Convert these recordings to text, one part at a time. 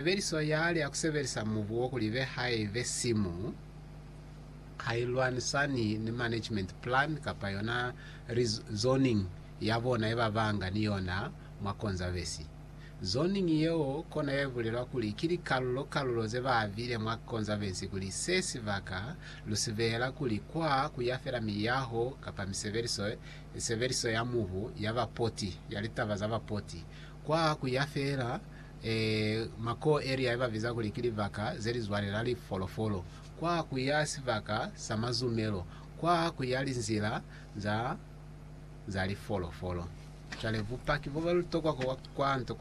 Sebeliso ya hali ya ku sebelisa mubu wo kuli ibe hai be simu ha i lwanisani ni management plan kapa yona zoning ya bona ye ba banga ni yona mwa Konzavesi. Zoning yeo kona ye bulelwa kuli ki likalulo kalulo ze ba abile mwa Konzavesi kuli se sibaka lu si beela kuli kwa ku ya fela miyaho kapa misebeliso sebeliso ya mubu ya bapoti ya litaba za bapoti kwa ku ya fela Mako Eria ibabiza kuli ki libaka zelizwalela lifolofolo kwa kuya sibaka sa mazumelo, kwa kuya linzila za lifolofolo. Cwale bupaki bobalutokwa kwa nto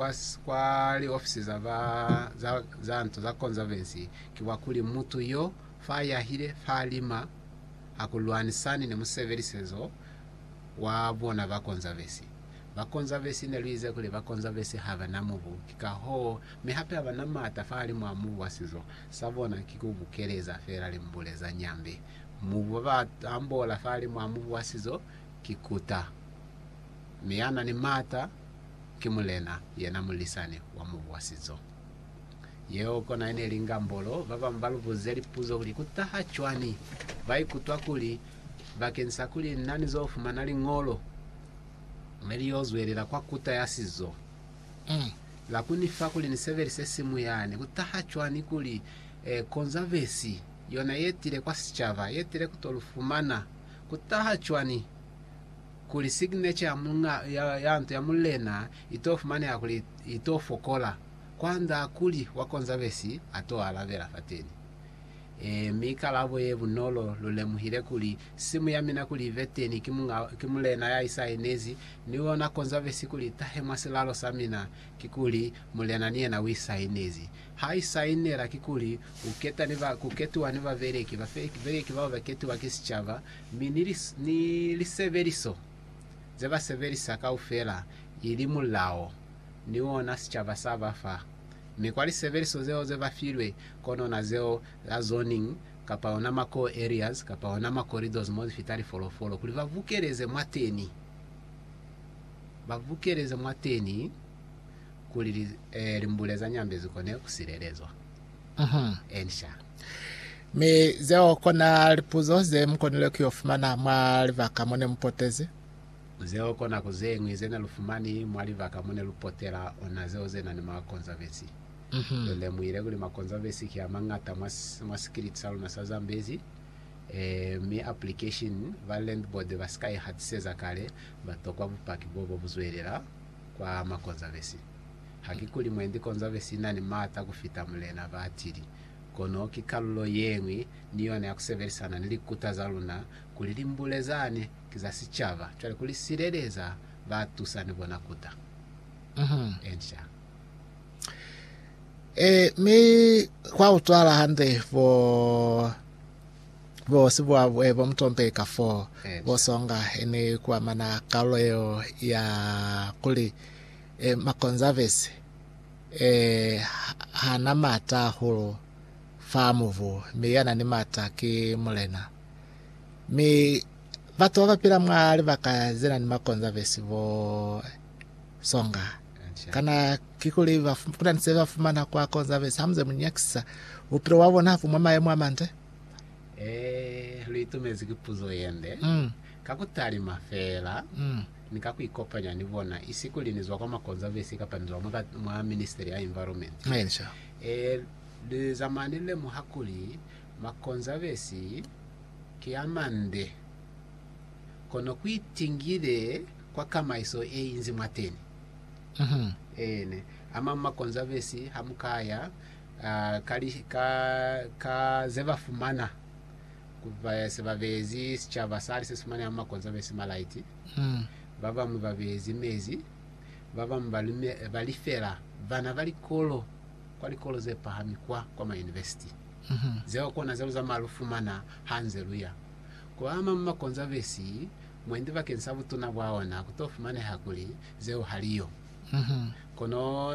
kwa liofisi za nto za Conservancy ki bwa kuli mutu yo fa yahile fa lima hakulwanisani ni musebelisezo wa bona ba Conservancy. Ba Konzavesi ne lu ize kuli ba Konzavesi ha ba na mubu, ki ka hoo, mi hape ha ba na maata fahalimwaa mubu wa sizo sa bona ki ku bukeleza feela limbule za nyambi. Mubu ba ba ambola fahalimwaa mubu wa sizo ki kuta, mi ya na ni maata ki mulena, yena mulisani wa mubu wa sizo. Yeo kona yene ili ngambolo. Ba bañwi ba lu buze lipuzo kuli, Ku taha cwani? Ba ikutwa kuli, Bakeñisa kuli na ni zo fumana Liñolo, ne li yo zwelela kwa kuta ya sizo. La ku ni fa kuli ni sebelise simu yani ku taha cwani kuli Konzavesi yona ye tile kwa sicaba ye tile ku to lu fumana? Ku taha cwani kuli signature ya muñ'a ya nto ya mulena i to fumaneha kuli i to fokola, kwand'a kuli wa Konzavesi a to alabela fateni? Ee, mi kalabo ye bunolo, lu lemuhile kuli, simu ya mina kuli ibe teni ki Muñ'a, ki Mulena ya isainezi, mi u ona konzabesi kuli itahe mwa silalo sa mina, kikuli, Mulena ni yena u isainezi. Ha isainela, kikuli, u keta ni ba, ku ketiwa ni babeleki, babeleki bao ba ketiwa ki sicaba, mi ni, ni lisebeliso ze ba sebelisa kaufela, ili mulao, ni ona sicaba sa ba fa. Mi kwa lisebeliso zeo ze ba filwe, kono na zeo la zoning, kapa ona ma core areas, kapa ona ma corridors mo zi fita lifolofolo, kuli ba bukeleze mwateni, ba bukeleze mwateni, kuli li, eh, limbule za nyambe zi kone ku silelezwa. Mm-hmm. Ensha. Mi zeo kona lipuzo ze mu konile ku yo fumana mwa libaka mo ne mu potezi. Zeo ko nako zeñwi zene lu fumani mwa libaka mone lu potela ona zeo ze na ni makonzavesi. Lu lemuhile kuli makonzavesi ki a mañata mwa sikiliti sa luna sa Zambezi, mi application ba Land Board ba si ka i hatiseza kale, ba tokwa bupaki bo bo bu zwelela kwa makonzavesi. Ha ki kuli mwendi konzavesi i na ni maata ku fita mulena, ba atili, kono ki kalulo yeñwi ni yona ya ku sebelisana ni likuta za luna kuli li mbule zani Ki za sicaba cwale ku li sileleza ba tusani bona kuta. Ensha. E, mi kwa utwala hande bo bo sibuwa eh, bo mutombe ka fo Ensha. bo songa ene kuamana kalulo yeo ya kuli eh, makonservers eh, ha- hana mata hahulu fa mubu, mi yana ni mata ki mulena. Mi batu babapila mwa libaka zenani makonza besi bo songa. Kana kikuli kunani se bafumana kwa konza besi hamuze munyakisisa bupilo bwa bona hapu mwa mayemo amande? Eh, luitumezi ki puzo yende. Mm. Ka kutalima feela, Mm. ni ka kuikopanya ni bona, isi kuli nizwa kwa makonza besi kapa nizwa mwa, mwa ministry ya environment. Aye, ni sho. Eh, lizamani lemuha kuli Makonzabesi ki a mande, kono ku itingile kwa kamaiso ye inzi mwateni. Eene, a mañi makonzabesi ha mu ka ya ka, ka ze ba fumana ku ba se ba beezi sicaba sali se si fumaneha mwa makonzabesi malaiti, ba bañwi ba beezi mezi, ba bañwi ba lifela bana ba likolo. kwa likolo ze pahami kwa kwa ma university zeo kona zelu za malu fumana ha nze luya ku ama mwa konzavesi mwendi bakeng sa butuna bwa ona ku to fumaneha kuli zeo hali yo kono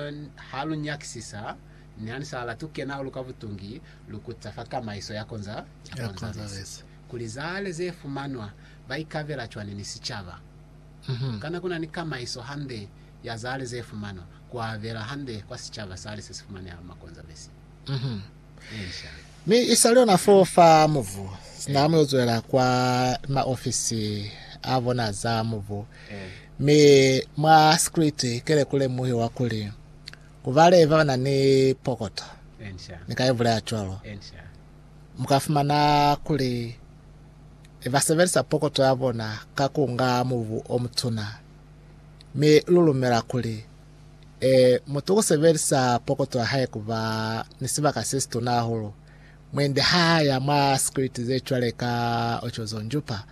ha lu nyakisisa ni ha ni sa latu kena hulu ka butungi lu kuta fa kamaiso ya konza ya konzavesi kuli zale ze fumanwa ba ikabela cwani ni sicaba kana kuna ni kamaiso hande ya zale ze fumanwa ku abela hande kwa sicaba sali se si fumaneha mwa Konzavesi ye Nsha. Mi isali ona fo fa mubu, sina amu yo zwela kwa maofisi a bona za mubu, mi mwa sikriti ke le ku lemuhiwa kuli ku ba le ba ba na ni pokoto, ni ka ibulela cwalo. Mu ka fumana kuli ba sebelisa pokoto ya bona ka ku nga mubu o mutuna. mi lu lumela kuli e mutu u sebelisa pokoto ya hae ku ba ni sibaka se situna hahulu mwendi ha a ya mwa sikwiti ze cwale ka Ochozo Njupa,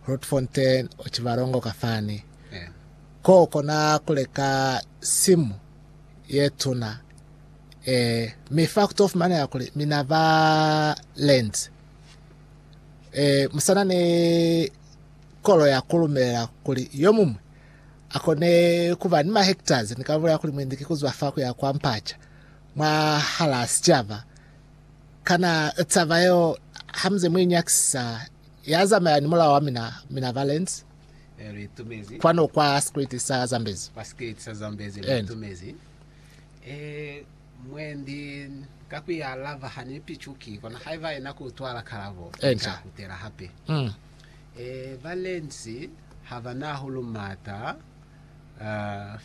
Grootfontein, Otjiwarongo ka fani, ko kona ku leka simu ye tuna e mi fa ku to fumanela kuli mina ba Lent e musana ni Kolo ya kulumelela kuli yomuñwi akone kuba ni mahektazi ni kalulo ya kuli mwendi ki kuzwa fa kuya kwa mpaca mwahalaa sicaba. Kana taba yeo hamuze muinyakisisa yazamaya ni mulao wa mina, mina ba Lentz? Kwanu kwa Sikriti sa Zambezi. Kwa Sikriti sa Zambezi luitumezi. E, mwendi ka kuya lava hanipicuki, kono haiba yena kuutwala kalabo, nca kutela hape. Mm. Ba lensi ha ba na hahulu maata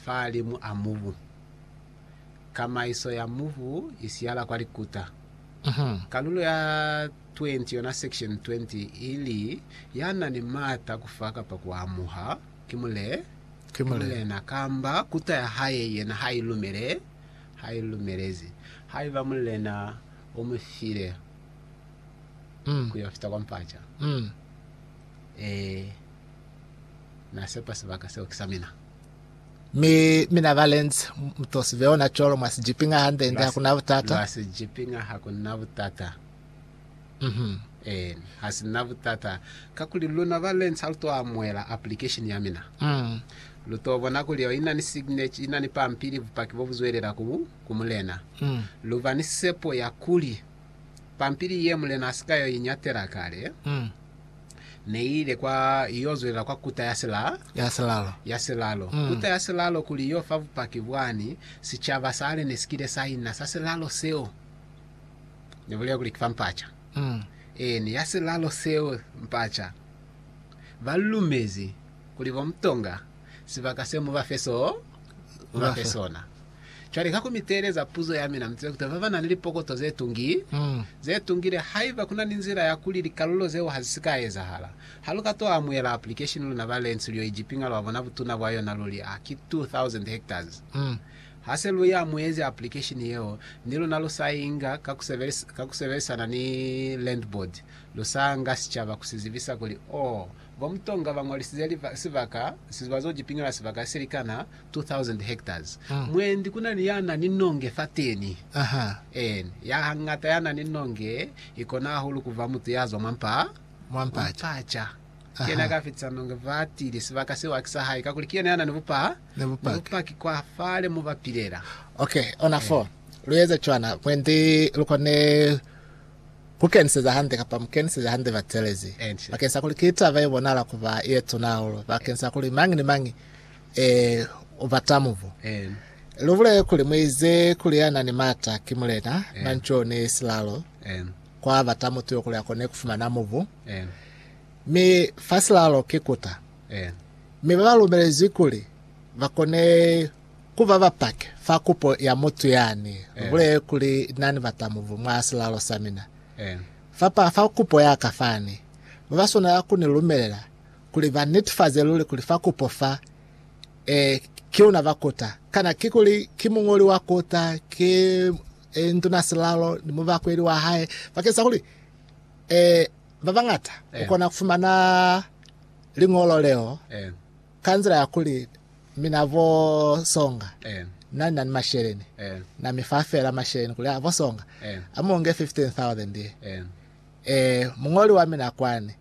fahalimu a mubu. Kamaiso ya mubu i siyala kwa likuta. Kalulo ya 20 yona section 20 i li, Ya na ni maata a ku fa kapa ku amuha, ki mulena kamba kuta ya hae yena ha i lumele, ha i lumelezi, haiba mulena o mu file. ku yo fita kwa mpaca. Ee, Na sepa sibaka seo ki sa mina. Mi mina ba lenzi, mu to sibe ona cwalo, mwa si jipinga hande, ende hakuna butata. Lwa si jipinga hakuna butata. Mm-hmm. Ee, ha si na butata. Kakuli luna ba lenzi ha lu to amuela application ya mina. Mm. Lu to bona kuli yo ina ni signature, ina ni pampili, bupaki bo bu zwelela ku, ku mulena. Mm. Lu ba ni sepo ya kuli pampili ye Mulena a si ka yo iñatela kale Mm. ne i ile kwa yo zwelela kwa kuta ya sila, Ya silalo. ya silalo. Mm. Kuta ya silalo kuli yo fa bupaki bwani sicaba sale ne si kile sa ina sa silalo seo. Ne bulela kuli ki fa mpaca. Mm. Eeni, ya silalo seo, mpaca. Ba lu lumezi kuli bo mutonga sibaka se mu ba fe so, mu ba fe sona. Cwale ka ku mi teeleza puzo ya mina, mu zibe kutala ba ba na ni lipokoto ze tungi, ze tungile. Haiba ku na ni nzila ya kuli likalulo zeo ha zi si ka ezahala, ha lu ka to amuhela application luna ba Lentsu lyo ijipinga lwa bona butuna bwa yona lu li, A ki 2,000 hectares? Ha se lu i amuhezi application yeo, ni luna lu sa i nga ka ku sebelisana ni Land Board, lu sa nga sicaba ku si zibisa kuli, Oh, Ba mutonga ba ñwalisize sibaka se ba zo ki piñola sibaka se likana 2000 hectares. Mwendi ku na ni ya na ni nonge fateni. En, ya hangata ya na ni nonge i kona hahulu ku ba mutu ya zwa mwa mpa, mwa mpaca. Ki yena ya ka fetisa nonge ba tile. Sibaka seo haki sa hae, kakuli ki yena ya na ni bupa, ni bupaki kwa fale mo ba pilela. Ok, ona fo lu eza cwana mwendi lu kone. Ku keniseja hande kapa mu keniseja hande batelezi bakeng sa kuli ki taba ye bonahala ku ba ye tuna hahulu bakeng sa kuli mañi ni mañi e u bata mubu. Lu bulele kuli mu ize kuli ya na ni maata ki Mulena, Manzwi o ni silalo, kwa bata mutu yo kuli a kone ku fumana mubu, mi fa silalo ki kuta. Mi ba ba lumelezwi kuli ba kone Ku ba bapaki fa kupo ya mutu yani, lu bulele kuli na ni batamubu mwa silalo sa mina. Fap'a fa kupo ya ka fani, ba ba swanela ku ni lumelela kuli ba nitifaze luli kuli fa kupo fa, ee, ki luna ba kuta. Kana kikuli ki muñoli wa kuta, ki, ee, nduna-silalo ni mubakweli wa hae, bakeng sa kuli, ee, ba bañata ku kona ku fumana liñolo leo? Ka nzila ya kuli, mina vo songa na ni na ni masheleni, na mi fa fela masheleni kuli, vo songa, a mu nge 15,000 ye. Ee, muñoli wa mina kwani,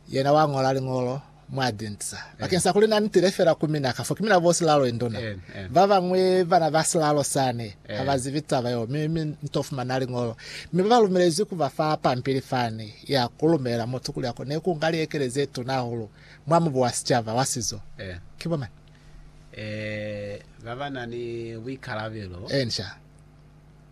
yena wa ñola liñolo mwa dinsa, bakeng sa kuli na ni tile fela ku mina, kafo ki mina bo silalo induna. Ba bañwi bana ba silalo sani ha ba zibi taba yeo, mi, mi ni to fumana liñolo. Mi ba ba lumelezwi ku ba fa pampili fani, ya ku lumela mutu kuli a kone ku nga liekele ze tuna hahulu. mwa mubu wa sicaba wa sizo. Ki bo mañi? Ee, ba ba na ni buikalabelo. Ee, ni sha.